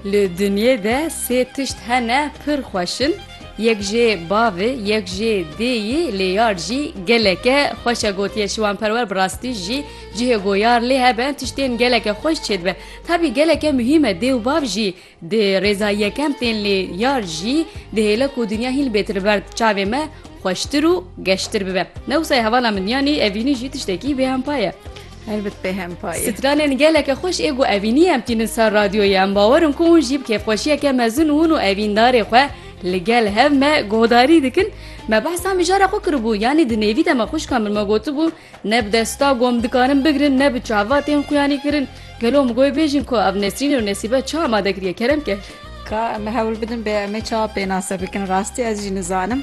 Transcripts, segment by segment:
Li dinyê de sê tişt hene pir xweş in, yek jê bavê, yek jê dêyî, lêyar jî gelek e. Xweş e gotiye şiwanperwer bi rastî jî cihê goyar lê hebe tiştên geleke xweş çêdibe. Tabî geleke muhîm e dê û bav jî di rêza yekem tên lê yar jî dihêle ku dinya hîn bêtir li ber çavê me xweştir û geştir bibe. Ne wisa ye hevala min yanî evînî jî tiştekî bêhempa ye. Helbet pê hem pay e. Stranên geleke xweş ê ku evînî em tînin ser radyoyê em bawer in ku hûn jî bi kêfxweşiyeke mezin hûn û evîndarê xwe li gel hev me guhdarî dikin. Me behsa mijara xwe kiribû yanî di nêvî de me xwişka min me gotibû ne bi desta gom dikarin bigirin ne bi çava tên xuyanî kirin. Gelo em goy bêjin ku ev Nesrîn û Nesîbe çi amade kiriye kerem ker. Ka em hewl bidin bê em ê çawa pênase bikin rastî ez jî nizanim.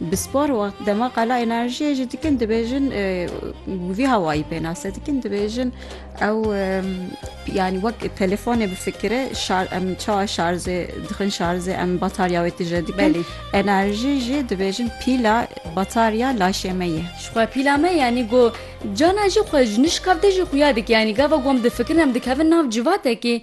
Bi spor û dema qala enerjiyê jî dikin dibêjin vî hawayî pênase dikin dibêjin ew yanî wek telefonê bifikire em çawa şarzê dixin şarzê em batarya wê tije dikin enerjî jî dibêjin pîla batarya laşê me ye xwe pîla me yanî go cana jî xwe ji nişkavtê jî xuya dike yanî gava gom difikirin em dikevin nav civatekî